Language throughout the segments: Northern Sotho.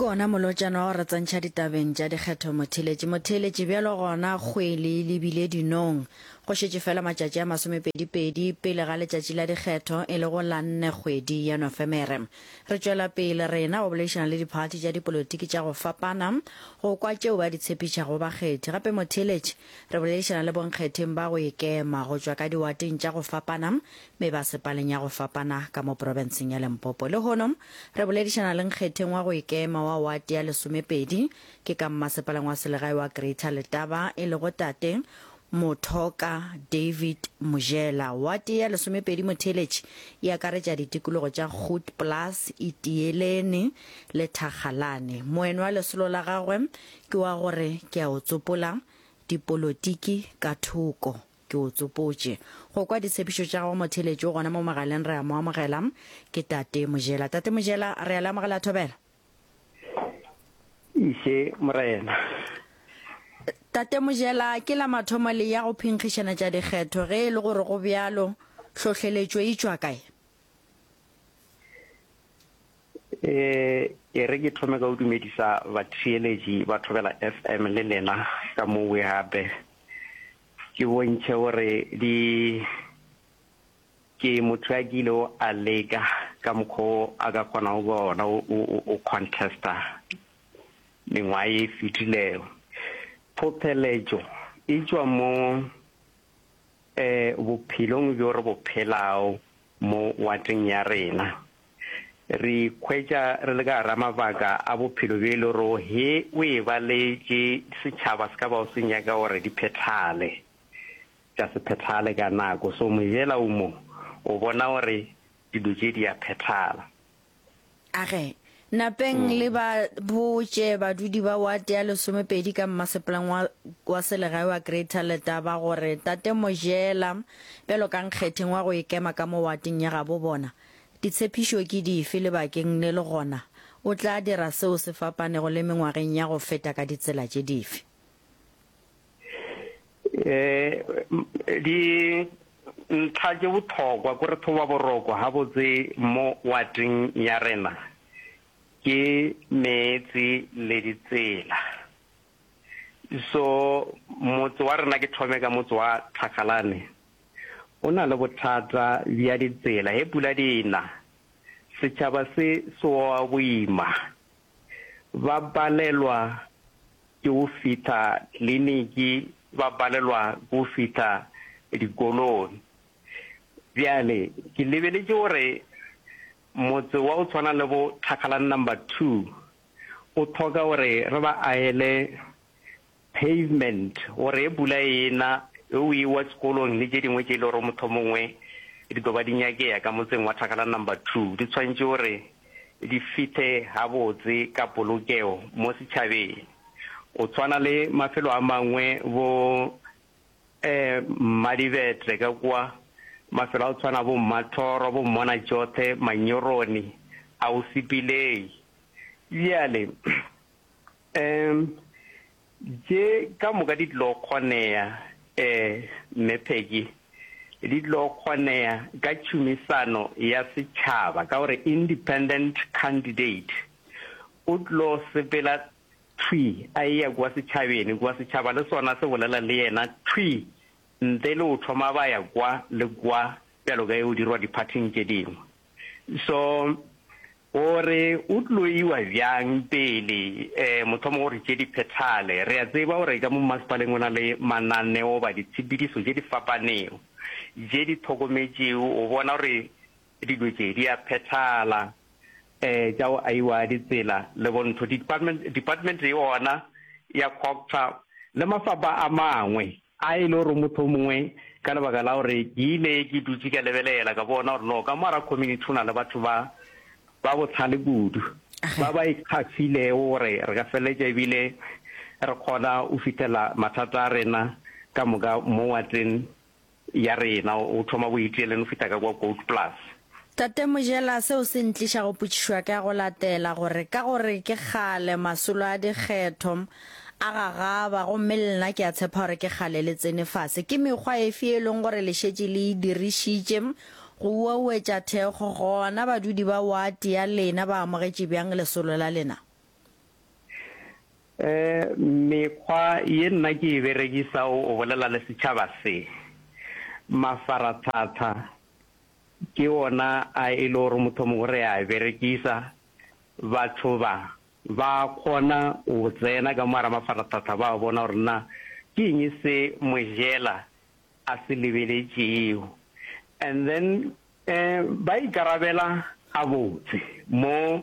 Ke ona molotšana wa go re tsentšha ditabeng tša dikgetho motheeletši. Motheeletši, bjalo gona kgwele e lebile dinong. Go šetše fela matšatši a masomepedipedi pele ga letšatši la dikgetho e lego la nne kgwedi ya Nofemere. Re tšwela pele rena go boledišana le diphathi tša dipolotiki tša go fapana go kwa tšeo ba di tshephišago bakgethi. Gape motheeletši, re boledišana le bonkgetheng ba go ikema go tšwa ka diwateng tša go fapana me ba sepaleng ya go fapana ka mo porofenseng ya Lempopo. Lehono, re boledišana le nkgetheng wa go ikema wa wate ya lesomepedi, ke ka mmasepaleng wa selegae wa Greater Letaba, e lego Tate Mothoka David Mojela. Wate ya lesomepedi motheeletši e akaretša ditikologo tša Grootplaas, Itieleni le Thakgalane. Moen wa lesolo la gagwe ke wa gore ke a o tsopola, dipolotiki ka thoko. Ke o tsopotše go kwa ditshepišo tša gago motheletši o gona mo mogaleng re a mo amogela ke Tate Mojela. Tate Mojela re a le amogela thobela. Ise Morena. Tate Mojela ke la mathomo le ya go phinkgišana tša dikgetho ge e le gore go bjalo hlohleletšo e tšwa kae? Eh e re ke thome ka o dumedisa batheeletši ba thobela FM le lena ka mo we gape. Ke bontšhe gore di ke motho ya kile o a leka ka mokgwa o a ka kgonago ka ona o contesta mengwaga e fetilego. Phopheletšo e tšwa mo um bophelong bjo re bo phelago Mo wateng ya rena, re ikhwetša re le ka gar'a mabaka a bophelo bjo e le gore he o e baletše setšhaba se ka bago se nyaka gore di phethale, tša se phethale ka nako. So mojela o mo, o bona gore dilo tše di a phethala. Age, napeng mm. le ba botše badudi ba wate ya lesomepedi ka mmaseplang wa, wa selegae wa greater letaba gore tate mojela bjalo ka nkgetheng wa go ikema ka mo wateng ya gabo bona ditshepišo ke dife lebakeng le le gona o tla dira seo se fapanego le mengwageng ya go feta ka ditsela tše dife eh di ntlha tše bothokwa ko re thoba boroko ga botse mo wating ya rena ke meetse le ditsela so motse wa rena ke thome ka motse wa tlhagalane o na le bothata bja ditsela he pula di na setšhaba se seoa boima ba palelwa ke go fihla kliniki, ba palelwa ke go fihla dikolong. Bjale ke lebeletše gore motse wa go tshwana le bo Thakgalang number two o tlhoka gore re ba ahele Pavement gore ge pula e na ge o ewa sekolong le tše dingwe tše e le gore mohlomongwe di tlo ba di nyakea ka motseng wa Thakgala Number Two di tshwanetše gore di fihle gabotse ka polokego mo setšhabeng go tshwana le mafelo a mangwe bo Mmadibetle ka kwa, mafelo a go tshwana bo Mmathoro, bo Mmonajothe, Manyoroni, Ausipilei bjale. Umm tše ka moka di tlilo kgoneya eh Mme Peggy, di tlilo kgoneya ka tšhumisano ya setšhaba ka gore independent candidate o tlilo sepela thwi a eya kua setšhabeni kua setšhaba le sona se bolela le yena thwi ntle le go thoma ba ya kwa le kwa bjalo ka e o dirwa di-party-ing tše dingwe. So O re o tlo iwa bjang pele um mothomo gore tše di phethale. Re a tseba gore ka mo mmasepaleng go na le mananeo goba ditshepedišo tše di fapanego tše di hlokometšego go bona gore dilo tše di a phethala um tša go aiwa ditsela le go ntho, department department yona ya COGTA le mafapha a mangwe. A e le gore mohlomongwe ka lebaka la gore ke ile ke dutše ka lebelela ka bona gore no ka mo ara community go na le batho ba ba bohlale kudu ba ba ikgafilego gore re ka feleletša ebile re kgona go fitlhela mathata a rena ka moka mo wateng ya rena o thoma boitieleng o fihla ka kwa gold plus Tate Mojela, seo se ntliša go potšišwa ka go latela gore ka gore ke kgale masolo a dikgetho a gagaba gomme le nna ke a tshepa gore ke kgale le tsene fase, ke mekgwa efe e leng gore le šetše le e dirišitše go uauetša thekgo gona badudi ba wate ya lena ba amogetše bjang lesolo la lena? Mekgwa ye nna ke e berekisa o bolela le setšhaba se, mafaratlhatlha, Ke wona a e le gore mothomong re a berekisa. Batho ba ba kgona go tsena ka mo gara mafaratlhatlha ba bona gore na ke eng se Mojela a se lebeletšego and then um ba ikarabela gabotse mo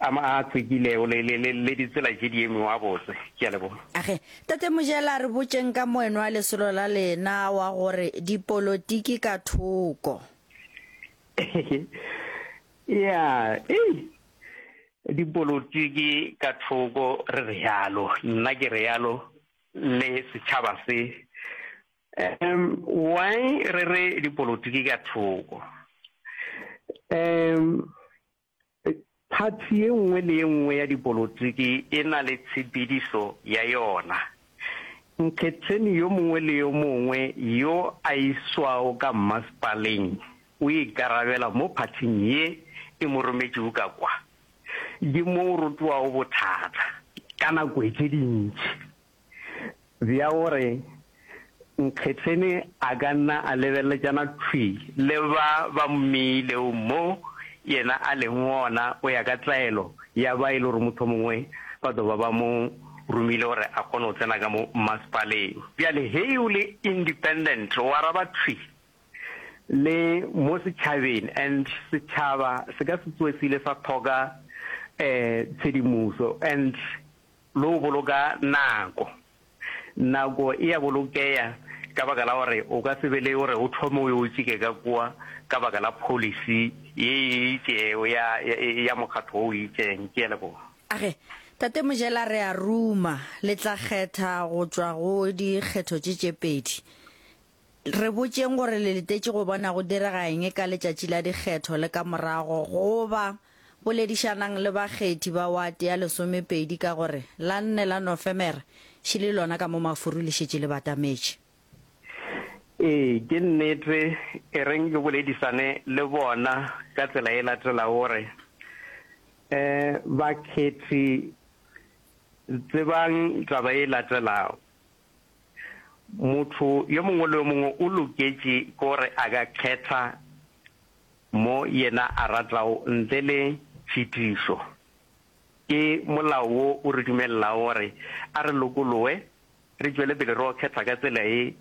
A ma a tsekilego le, le, le, le ditsela tše diengwe wa botse. Ke a leboga. Age, Tate Mojela, re botšeng ka moenwa lesolo la lena wa gore dipolotiki ka thoko. Ya, ei, dipolotiki ka thoko re realo, nna ke realo le setšhaba se. Um, why re re dipolotiki ka thoko? Um, Phathi ye nngwe le ye nngwe ya dipolotiki e na le tshepedišo ya yona. Nkgetheni yo mongwe le yo mongwe yo a iswago ka mmasepaleng o ikarabela mo phathing ye e mo rometšego ka kwa. Ke mo o rotowago bothata ka nako tše dintši. bja gore Nkgetheni a ka nna a lebeleletšana thwi le ba ba mmeilego mo yena a lego gona go ya ka tlaelo ya ba e le gore mohlomongwe ba tlo ba ba mo romile gore a kgone go tsena ka mo mmasepaleng. Bjale ge o le independent o araba thwi le mo setšhabeng and setšhaba se ka se tsoe se ile sa thoka tshedimoso and Le go boloka nako. Nako e a bolokeya ka baka la gore o ka se be le gore o thome o yo tšike ka kua ka baka la pholisi ye e itšego ya, ya, ya mokgatlo wo o itšeng. Ke a leboga. A re, Tate Mojela, re a ruma. Le tla kgetha go tšwa go dikgetho tše tše pedi. Re botšeng gore le letetše go bona go direga eng ka letšatši la dikgetho le ka morago goba boledišanang le bakgethi ba wate ya lesomepedi ka gore la nne la Nofemere še le lona ka mo mafuru le šetše le batametše. Ee, ke nnete. E reng le boledišane le bona ka tsela e latelago gore bakgethi tsebang taba e latelago. Motho yo mongwe le yo mongwe o loketše ke gore a ka kgetha mo yena a ratago ntle le tšhitišo. Ke molao wo o re dumelelago gore a re lokologe re tšwele pele re yo kgetha ka tsela ye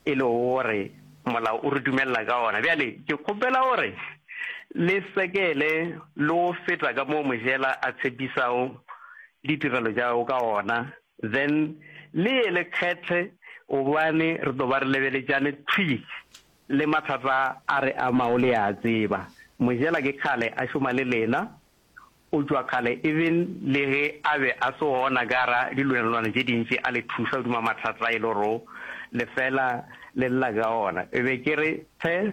e lego gore molao o re dumelela ka wona. Bjale ke kgopela gore le sekele le go feta ka moo Mojela a tshepisago ditirelo tša gagwe ka gona Then le ye le kgethe gobane re tlo ba re lebeletšane thwi le mathata a re amago le a tseba. Mojela ke kgale a šoma le lena, o tšwa kgale even le ge a be a se gona ka gara dilwanelwana tše dintši a le thuša hodima mathata e le gore le fela le lla ka ona. E be ke re. Hle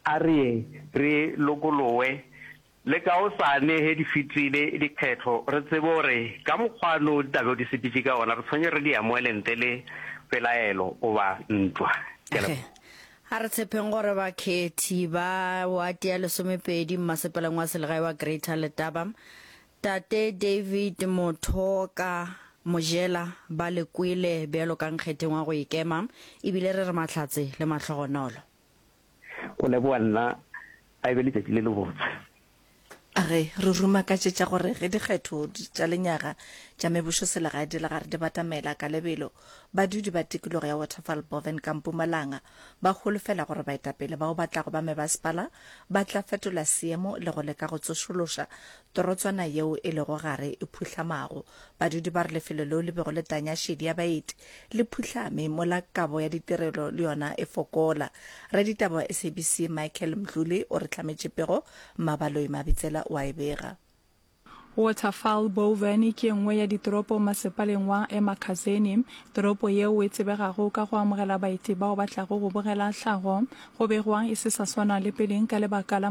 a re ye re lokologe Le kaosane he di fetile dikgetho, re tsebe gore ka mokgwa no di tla bego di sepetše ka ona, re tshwenye re di amoele ntle le pelaelo goba ntwa. Ke a leboga. A re tshepeng gore bakhethi ba wate ya lesomepedi mmasepaleng wa selegae wa Greater Letaba, Tate David Mothoka Mojela ba le kwele bjalo ka nkgetheng wa go ikema, ebile re re mahlatse le mahlogonolo. Go leboga nna, a e be letšatši le lebotse. Ge re rumakatšetša gore ge dikgetho tša lenyaga tša mebošoselegae di lega re di batamela ka lebelo, badudi ba tikologo ya Waterval Boven ka Mpumalanga ba holofela gore baetapele bao ba tlago ba mebasepala ba tla fetola seemo le go leka go tsošološa Torotswana yeo e lego gare e phuhlamago. Badudi ba re lefelo leo le bego le tanya šedi ya baeti le phuhlame mola kabo ya ditirelo le yona e fokola. Raditaba wa SABC Michael Mdluli o re hlametše pego, Mmabaloi Mabitsela o a e bega. Waterfall Boven ke e nngwe ya ditoropo masepaleng wa Emakhazeni. Toropo yeo e tsebegago ka go amogela baeti bao ba tlago go bogela tlhago go begwa e se sa swana le peleng ka lebaka la